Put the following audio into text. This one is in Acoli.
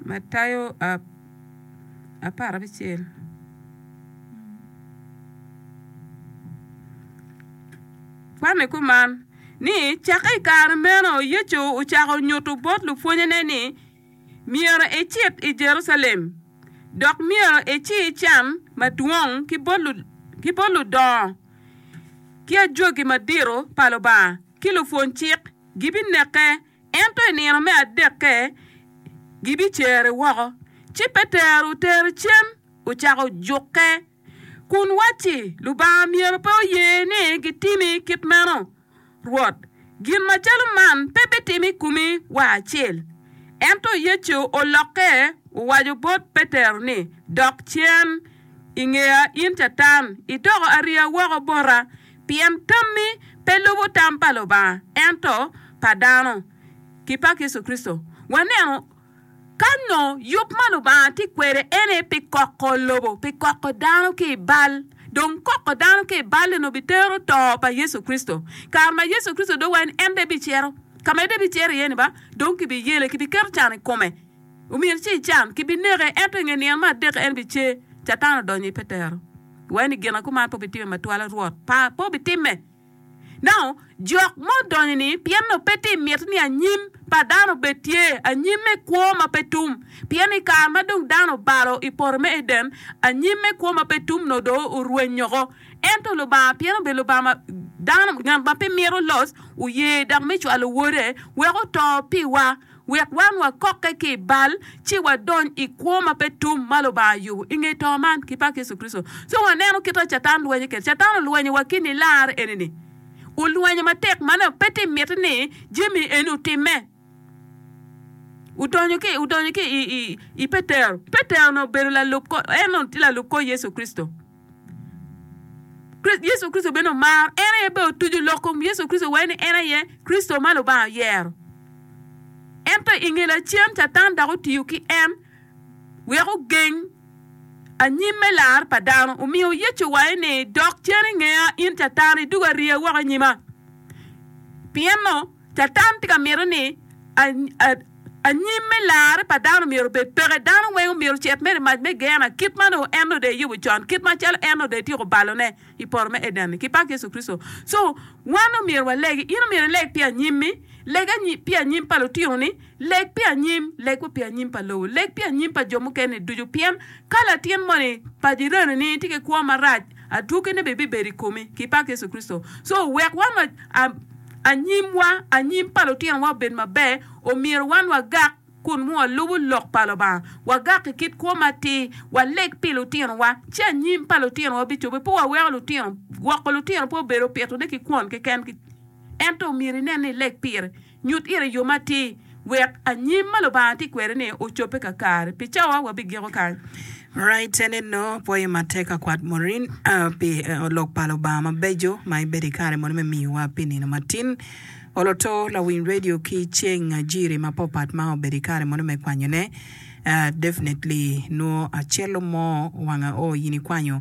Matayo apar abicel kwanni kuman ni cakke i kare meno Yecu ocako nyuto bot lupwonnyene ni myero ecit i Jerucalem dok myero eci can madwong ki bot ludongo ki ajwagi madito pa Lubanga ki lupwony cik. gibineke, ento i nino me adekke gibicere woko. Ci Petero otere cen, ocako jukke, kun wacci, Lubanga myero pe oye ni gitimi kit meno, Rwot! Gin macalo man pe bitim i komi wa acel. Ento Yecu olokke owaco bot Petero ni, Dok cen i ngeya in Catan, idoko ariya woko bota, pien tammi pe lubo tam pa Lubanga, ento pa dano, ki pa Yecu Kricito. Wanenu kany nyo yub ma Lubanga tye kwede ene pi koko lobo, pi koko dano ki i bal. Dong koko dano ki i bal eno bitero to pa Yecu Kricito. Kare ma Yecu Kricito dong wa en, en de bicito ka ma de bicito iye ni ba, dong kibiyele, kibiketo can i kome, omyero ci ican, kibineke, ento i nge nino me adek en bicer, Catan odonyo i petero. Iwaco ni, 'Gin a kuman pe wubitimme ma twala, Rwot? Par, pe wubitimme. Nano, jok ma odonyo-ni, pien nongo pe tye miti ni anyim pa dano obed tye, anyim me kwo ma pe tum. Pien i kare ma dong dano obalo i poto me Eden, anyim me kwo ma pe tum nongo dong orweny woko. Ento Lubanga, pien obedo Lubanga ma dano, ngat ma pe mito loc, oye dok me cwalo Wode wek oto piwa, wek wan wakokke ki i bal ci wadony i kwo ma pe tum ma Lubanga oyubo i nge to man ki pak Yecu Kricito. Ci waneno kit ma Catan lwenyo kwede. Catan olwenyowa ki nilar eni-ni. Olwenyo matek ma nongo pe tye mitte ni jami eni otimme. Odonyo ki, odonyo ki i, i, i Petero. Petero-ni obedo lalub kor, en onongo tye lalub kor Yecu Kricito. Yecu Kricito bene omaro, en aye bene otuco lok kom Yecu Kricito wai ni en aye Kricito ma Lubanga oyero. Ento i nge lacen, Catan dok otiyo ki en wek ogeng anyim me lar pa dano. Omiyo Yecu owaco ni, Dok cen i ngeya, in Catan, idugo ariya woko i nyima. Pien-nu, Catan tye ka mito ni anyim me larre pa dano myero obed peke. Dano weng omyero ocit mere i mac me Geena, kit ma nongo en nongo dong eyubo con, kit macalo en nongo dong etyeko balone i poto me Eden-ni ki pak Yecu Kricito. So, wan omyero waleg, in omyero ileg pi anyimmi, leg pi anyim pa lutinoni. Leg pi anyim, leg wa pi anyim pa lobo, leg pi anyim pa jo mukene ducu, pien ka latin moni pa dyereni tye ki kwo marac, adwogine bene bibedo i komi, ki pak Yecu Kricito. So, wek wan wa, a, anyimwa, anyim pa lutinowa obed maber, omyero wan wagak kun nongo walubo Lok pa Lubanga, wagak i kit kwo matir, waleg pi lutinowa, ci anyim pa lutinowa bicobbe. Pe waweko lutino, gwoko lutino pe obedo pitone ki kwon keken, ento omyero inen ni ileg pire. Nyut ira yo matir wek anyim ma Lubanga tye kwede-ni ocobbe kakare. Pi cawa wabigiko kany. Raytene nongo pwoyo matek ka kwat Maureen pi Lok pa Lubanga mabeco ma ebedo i kare moni me miyowa pi nino matin. Oloto lawiny radio ki ceng ajiri mapopat ma obedo i kare moni me kwanyone. Definitely nwo acel o mo wanga oo in ikwanyo.